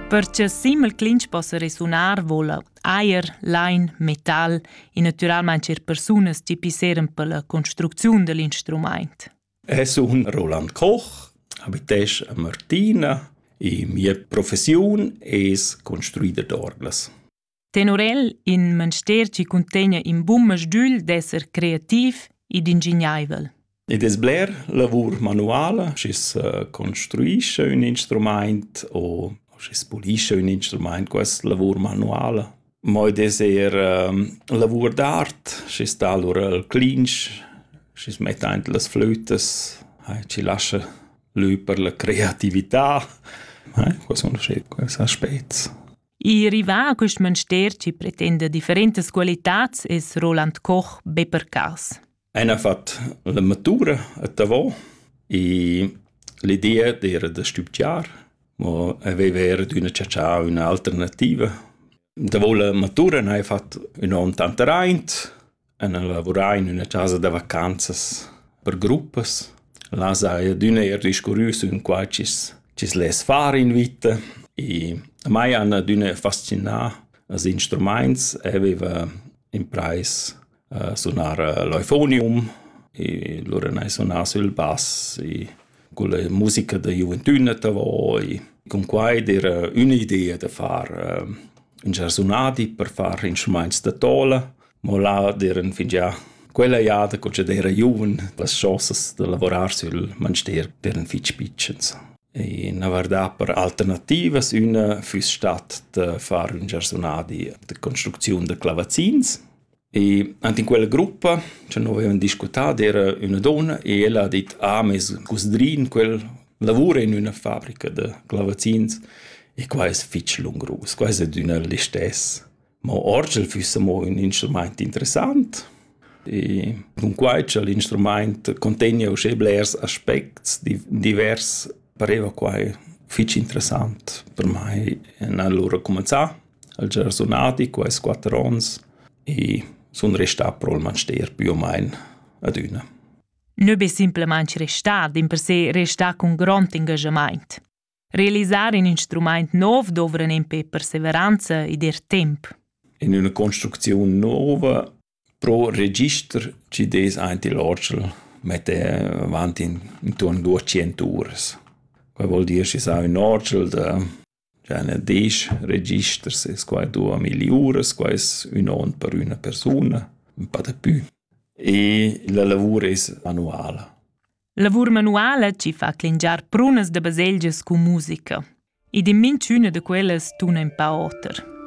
Per cha simel clinch possa resunar voula ajer, lain, metal e natüralmaing eir persunas chi pisseran pella construcziun da l'instrumaint. Es un Roland Koch, abitesch a Martina e mia professiun es construider d'orglas. Tenor el in manster chi cuntegna in bun masdügl d'esser creativ ed ingignaivel. Id es bler lavur manuala, schi's construischa ün instrumaint o schi's pulischa ün instrumaint, quest lavur manuala. Mo id es eir lavur d'art, schi's dà lura il clinch, schi's metta aint las flütas, chi lascha lü per la creatività. Quai sun schi quels aspets. I rivà a quist mönster chi pretenda differentas qualitats es Roland Koch be per cas. El ha fat la matura a Tavò e l'idea d'era da studiar, ma aveva era d'una cercià un'alternativa. Da la matura n'ha fatto un onn tanta raint, en lavurar in üna chasa da vacanzas per gruppas. Là saja adüna eir discurrüs ün qua chi's chi's less far in vita. E mai han adüna fascinà als instrumaints. Eu vaiva imprais a sunar l'eufonium e lura n'hai sunà sül bass e con la musica da giuventüna davo e cun quai d'eira ün'idea da far ün giarsunadi per far instrumaints da tola mo là d'eran fingià quella jada co ch'd era giuven las chosas da lavorar sül manster eran fich pitschens. E na vardà per alternativas üna füss stat da far ün giarsunadi da construcziun da clavazzins E ant in quella gruppa, che noi avevan discutà, era üna donna e ella ha dit, ah, mes cusdrin, quel lavora in üna fabrica da clavazzins e qua es fich lungrus, qua es adüna listess. Mo orgel füssa mo ün instrumaint interessant e dunquai cha l'instrumaint contegna uschè blers aspects divers pareva quai fich interessant per mai. Ün an lura cumanzà, al già sunati quais quatter ons e sun restà pro'l manster pü o main adüna. Nö be simplamaing restà, dimpersè restà cun grond engaschamaint. Realisar in instrumaint nov dovran empè perseveranza ed er temp. In üna construcziun nouva pro register chi des aint il orgel metter avant in intuorn 200 uras. Quai vuol dir schi sa ün orgel da già ne 10 registers es quai 2000 uras, quai es ün on per üna persuna, ün pa da pü. E la lavur es manuala. Lavur manuala ci fa clingiar prunas da baselgias cun musica. Ed in minchüna da quellas tuna in pa oter.